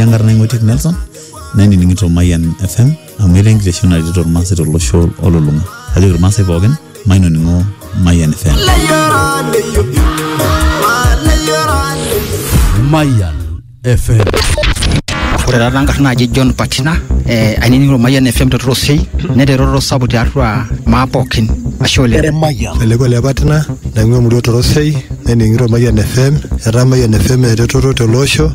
enkarna ing'oitiek nelson nainining'ito mayian fm amu etaa enkitesheni naretito irmaasai tolosho olulung'a ajoki irmaasai pookin mainoning'o mayian fm Mayan FM. ore taata enkarna naji john patina eh, ainining'o mayian fm te torosei neeta eroroto sapuk tiatua maa pookin ashe oleng Eremayian. Eleko le patina naing'ua emurua torosei naining'ito mayian fm etaa mayian fm eretoto tele osho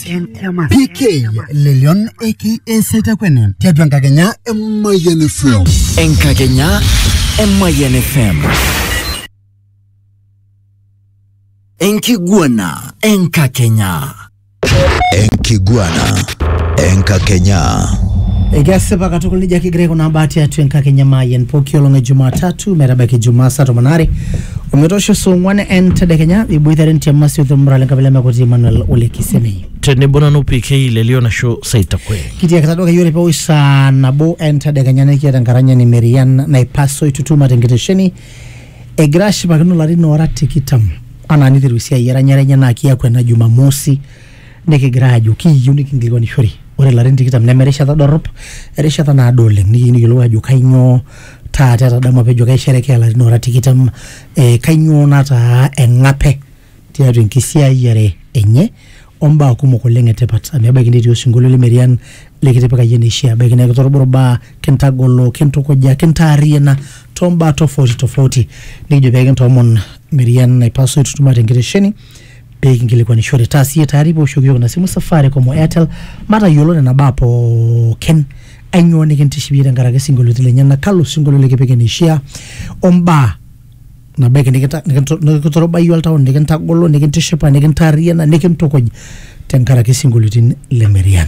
PK Lelion aka Setakwene tiatua enkakenya e Mayian FM. Enkakenya e Mayian FM. Enkiguana enkakenya. Enkiguana enkakenya. Ekesipa katukul nejia kigira aikunaa mbaa tiatua enkakenya Mayian pooki olong e Jumatatu metabaiki Jumaa saa tomon aare Ometoosho saa ong'wan entedekenya iboitare entiam masioto olmurrale enkabila emekoti Emmanuel Ole Kisemei. tenebo nanu PK le Lionasho Saitakwe. Kitiakita duo akeyie ore pewosh saa nabo entedekenya nikiata enkaranyani Merian Naipaso Itutuma tenkitesheni egira ashipakino ilarin oora tikitam anaa niteru esiai eranyare enye naa kiaku ena Jumamosi nikigira aajo kiyieu nikinkilikuanishore ore ilarin tikitam neme erishata dorrop erishata naado oleng nikiyieu nikiyiolou aajo kainyoo taata etadamu apa ejo kaisherekea ilarin oora tikitam eh, kainyoo nataa eng'ape tiatua enkisiayiare enye ombaa kumok oleng etipat amu ebaiki netii osinkolio lemerian likitipika iyie neishia ebaiki naa kitorogoro imbaa kintagolo kintukuja kintaarriyiana tombaa tofauti tofauti nikijo pekintoomon merian naipaso aitutum atenkitesheni pee kinkilikwanishore. Taa siye tayari pee oshoki yook ina simu Safaricom o Airtel matayiolo nena baa pookin. Ainyoo nikintiship iyie tenkaraki isinkolioitin lenyena, kalo sinkolio likipik eneishaa o mbaa nabaiki nikitorobayie oltau nikintagolo, nikintishipa, nikintaarriyiana, nikintukuj tenkaraki isinkolioitin le Merian.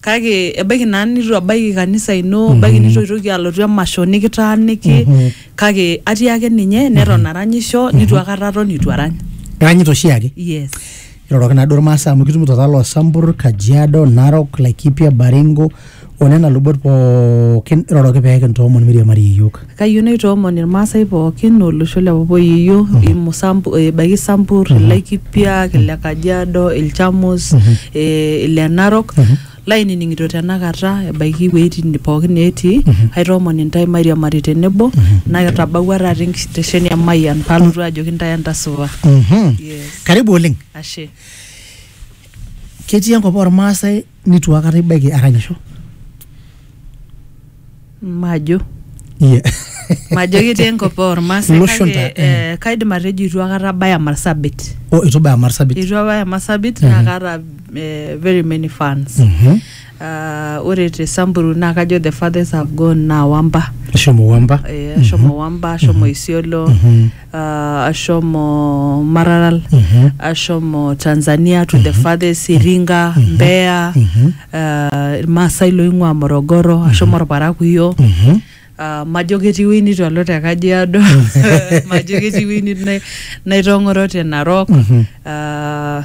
kake ebaiki naa nitu ebaiki kanisa ino ebaiki nitu itoki alotu emasho nikitaaniki kake atii ake ninye neton aranyisho nitu akata aton itu arany iranyita oshiake yes iroroki naduo irmaasai amu kitumito taa loosambur kajiado narok laikipia baringo onena lubot pookin iroroki pee kintoomon miriamari iyiook Kayieu naitoomon Ilmaasai pooki o losho le Papayieyio, Imusambu, ebaiki Sambur, Ilaikipiak, Ile Kajiado, Ilchamus, eh, Ile Narok, lainining'ito tenakata ebaiki iwueitin pooki neetii, aitoomon intae mairiamari tenebo, natabawua taata enkitesheni e Mayian palotu ajoki intae entasipa. Mhm. Yes. Karibu oleng. Ashe. Ketii enkop olmaasai nitu akata ibaiki aranyisho majo yeah. majo ketii enkop ormaasai Iloshon kake ta- eh. eh, kaidim atejo itu akata abaya marsabit o itu baya marsabit itu abaya marsabit naa Mhm. kaata eh, very many fans Mhm. Ah, ore te samburu naa kajo the fathers have gone naa wamba shomo wamba eh, ashomo wamba ashomo isiolo Mhm. uh, ashomo Maralal, ashomo Tanzania to the farthest Iringa, Mbeya, uh, Irmaasai loing'ua Morogoro, ashomo Orparakuyo. Uh, majo ketii ewueji nitu alo te Kajiado, majo ketii ewueji nitu nai- naitong'oro te Narok. Uh,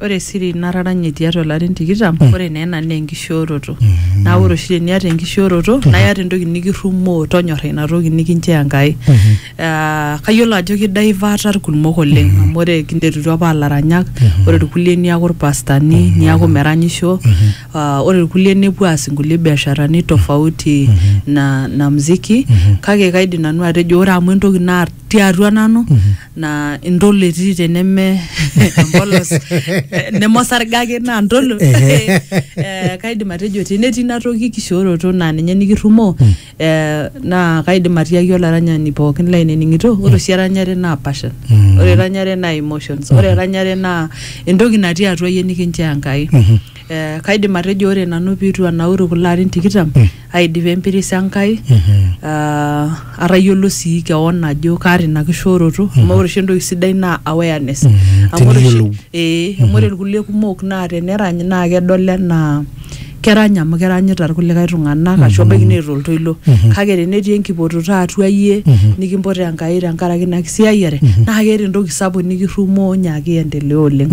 Ore esiri nataranye tiatua ilarin tikitam, ore naa ena naa enkishooroto. Naa ore oshi teniata enkishooroto naa iyata entoki nikirrumoo tonyorra ina toki nikinchoo Enkai. Ah, kayiolo ajo kidaivata irkumok oleng amu ore kinterutua apa aa ilaranyak, ore irkulie niaku irpastani, niaku meranyisho, ah, ore irkulie nepuo aas inkulie biasharani tofauti na na mziki. Kake kaidim nanu atejo ore amu entoki natii atua nanu na ntolo etii teneme empolos eh, nemosarge ake naa ntolo Ehe. Eh, kaidim atejo tenetii ina toki kishooroto naa ninye nikirrumoo eh, naa kaidim atiaki olaranyani pookin lainining'ito ore oshi eranyare naa passion Mm. ore eranyare naa emotions ore eranyare naa entoki natii atua yie nikinchoo Enkai Eh, kaidim atejo ore nanu piitu anauru kulo arin tikitam aidip empiris Enkai ah, atayiolo sii kewon ajo kaata ina kishooroto amu ore oshi entoki sidai naa awareness amu ore oshi teniyiolou. ee amu ore irkulie kumok naa tenerany naa kedol enaa kerany amu keranyita irkulikae tung'anak ashu ebaiki neeta oltoilo kake tenetii enkipototo atua iyie nikimpot Enkai tenkaraki ina kisiayiare naa keeta entoki sapuk nikirrumoo nyaaki iendelea oleng.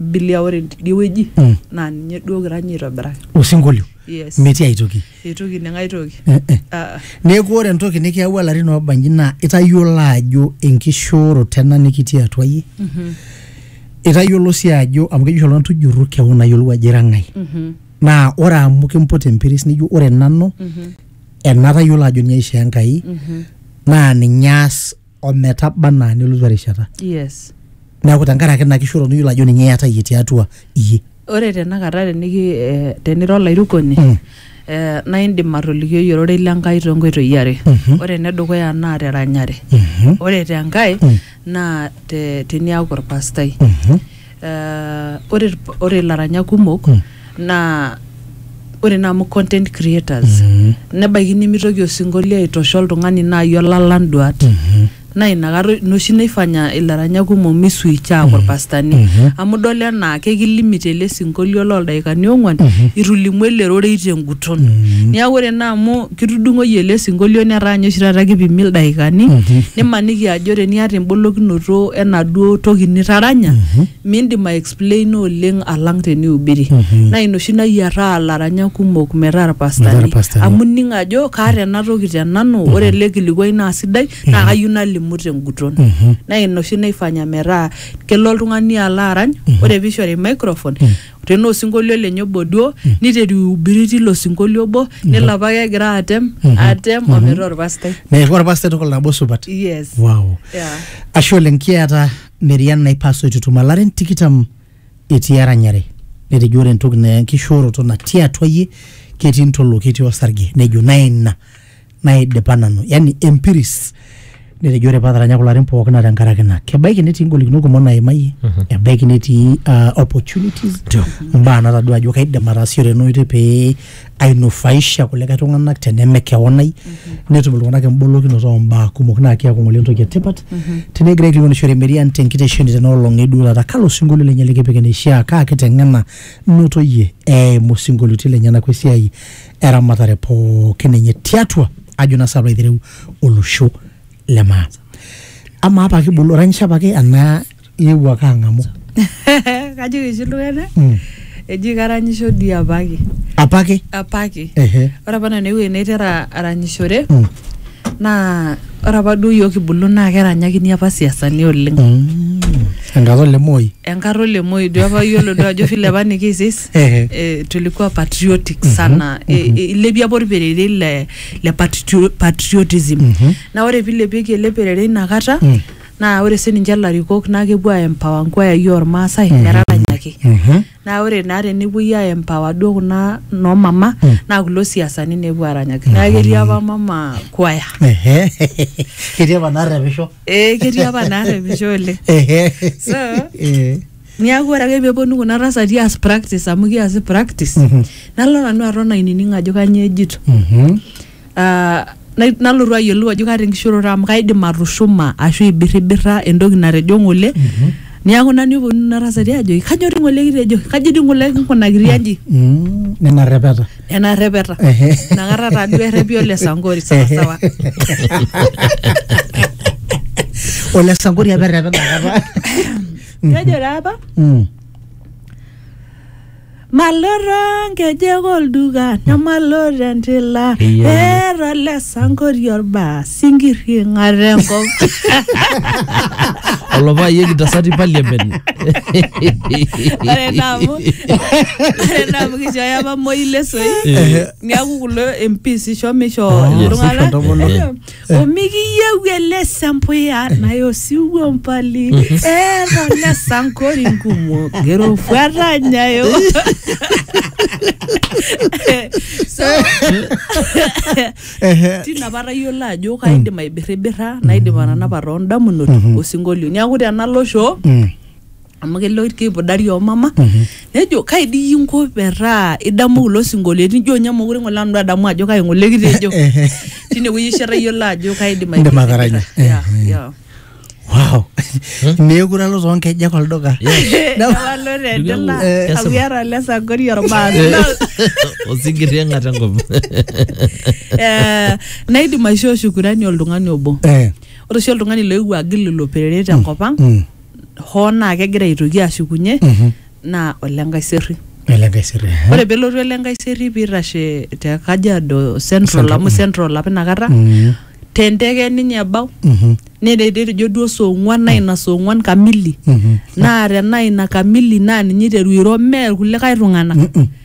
bilia ore tidie wueji mm. naa ninye duo kira ninye aitobiraki osinkolio yes. metii aitoki eitoki neng'ae toki eh, eh. Ah. neeku ore entoki nikiyawua larin oobanji naa itayiolo ajo enkishooroto ena nikitii atua yie mm -hmm. itayiolo sii ajo amu keji oltung'ani tujurru kewon ayiolou ajo ira ng'ae mm -hmm. naa ore amu kimput empiris nijo ore nanu mm -hmm. enatayiolo ajo ninye aishoo Enkai mm -hmm. naa ninye aas ometaba anaa nelotu erishata yes neeku tenkaraki ina kishooroto niyiolo ajo ninye iyata iyie tiatua iyie ore tenakata teniki eh, tenira olairukoni Mm. eh, naa indim atolikioi ororei le Nkai too nkoitoi are ore enedukuya naa teranyare ore tenkae naa te- teniaku orpastai Eh, ore irp- ore ilaranyak kumok Mm. naa ore naa amu content creators Mhm. nebaiki nimitoki osinkolio aitosha oltung'ani naaji olalang duat Mhm. naa inakata ina oshi naifanya ilaranyak kumok misuicha aaku irpastani Mhm. amu idol enaa kekilimit ele sinkolio loldaikani ong'uan Mhm. itu ilimu ele rorei tenguton Mhm. niaku ore naa amu kitudung'oyie ele sinkolio netaa ninye oshi taata kipimi ildaikani nimaniki ajo teniata embolokinoto enaduo toki nitaranya mindim aexplaina oleng alang tenihubiri naa ina oshi nayiataa ilaranyak kumok metaa Metaa irpastani irpastani. amu ining ajo kaata ena toki te nanu ore ele kilikuai naa sidai naa kayieu nalimu tenguton naa ina oshi naifanya metaa kelo oltung'ani alo arany ore piishori microphone tenaa osinkolio lenye obo duo niteru aihubiri tilo sinkolio obo nelo apake egira atem atem ometaa orpastai neeku orpastai tukul nabo supat yes wow yeah. ashe oleng kiata merian naipaso itutuma larin tikitam etii eranyare netejo ore entoki na enkishooroto natii atua yie ketii ntolo ketii osarge nejo naa ina naidipa nanu yani empiris netejo ore paataranya kulo arin pookin naa tenkaraki ina kebaiki netii ingolikinot kumok naimayie ebaiki netii uh, opportunities Ndio. mbaa natadua ajo kaidim ataasishore ena oitoi pee ainufaisha kulikae tung'anak teneme kewon ai netum iltung'anak embolokinoto oombaa kumok naa keeku ng'ole entoki etipat tenegira aikilikwanishore Marian tenkitesheni tena olong eduo taata kalo sinkolio lenye likipik eneishiaa kaa kiteng'ena notoyie eimu sinkolioitin lenyenak wesiai eramatare pookin enye tiatua ajo naa sapa aitereu olosho le maa amaa apa kibulu oranyisho apake enaa iewuo ake ang'amu kajoki oshi iltung'anak Mm. eji karanyisho dii apake apake apake ehe ore apa nanu ewueji naitera aranyishore Mm. naa ore apa duo yiok kibulu naa keranyakini apa siasani oleng Mm. enkata ole moi enkata ole moi duo apa yiolo duo ajo vile apa nikiisis Ehe. eh, tulikuwa patriotic sana eh, eh, ilepie apa orperere le, le patrio- patriotism na ore pilepieki ele perere inakata naa ore sininche ilarikok naa kepuo aempower nkwayai ormaasai metaranyaki Mhm. naa ore naa tenepuoi aempower duo kuna noomama naa kulo siasani nepuo aranyaki naa ketii apa mama kwaya Ehe. Ketii apa naarrepisho. eh, ketii apa naarrepisho oleng Ehe. So, Eh. Niaku ore ake peponu kuna tasati aas practice amu kiasi practice Mhm. nalo nanu aton ainining ajo kanyoo ejito Mhm. Ah, nai- nalotu ayiolou ajo kaata enkishoroto amu kaidim atushuma ashu aibirribirra entoki natejo ng'ole Mhm. niaku nanu eponu nena tasati ajoki kanyoo dii ng'ole kitejo kaji dii ng'ole kinkunakiri aji Mm, nena rrepeta nena rrepeta Ehe. inakata taaduo errepi ole sankori sawasawa ole sankori apa errepeta kata kejo taa apa Mm. maloto nkejek olduka nemaloto entila Eyiolo. eeta ole sankori olbaa sinkirri ing'ata enkop olopaayie kitasati parliament ore naa amu ore naa amu kishooyo apa moi lesoi Eh. niaku kulo MPs isho misho Oh, iltung'anak isho ntomonok. omikiyieu ele sempuya naye osiwuo mbali eeta ole sankori nkumok erofuata nyayo so Ehe. tina apa atayiolo ajo kaidim aibirribirra naidim atanapa toondamunot osinkolio niaku tenalosho Mm. amu kelo keipudari omama nejo kai dii iyie inko metaa idamu kulo sinkolioitin ijo ninye mokure ng'ole nanu adamu ajo kai ng'ole kitejo tinewueji oshi atayiolo ajo kaidim Indim ataranya. aipidipita. Yeah, yeah. wow meekure alo toonkejek olduka Ewalo tendela, Eh, amu iata ole Sankori ormaasi. osigiri eng'ata enkop Eh, naidim aishoo shukurani oltung'ani obo Eh, ore oshi oltung'ani loewuo agil ilo perere tenkop ang mm. hoo naa kegira aitoki ashukunye naa ole Nkaiserry. Ele Nkaiserry. eh. Ore pelotu ele Nkaiserry piitashe te Kajiado Central Central, amu mm. Central apa inakata Mm, te ndege ninye ebau mhm, netejo duo saa ong'uan naa ina saa ong'uan kamili mhm. naa tenaa ina kamili naa ninye iteru airo mee irkulikae tung'anak. Mm-mm.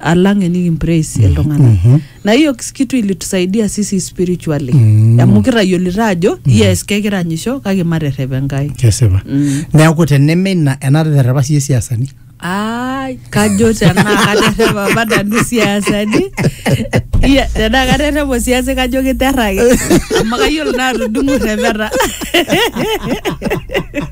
alang enikimpraise iltung'anak na hiyo kitu ilitusaidia sisi spiritually Mm. amu kitayiolito ajo yes kekiranyisho kake materrep enkai kesipa Mm. neeku teneme ina enaterrepa siye siasani Ai, kajo tenaa katerrepa apa nanu siasani Iya, tenaa katerrepa siasi kajo kiterraki amu kayiolo naa atudung'u rrepeta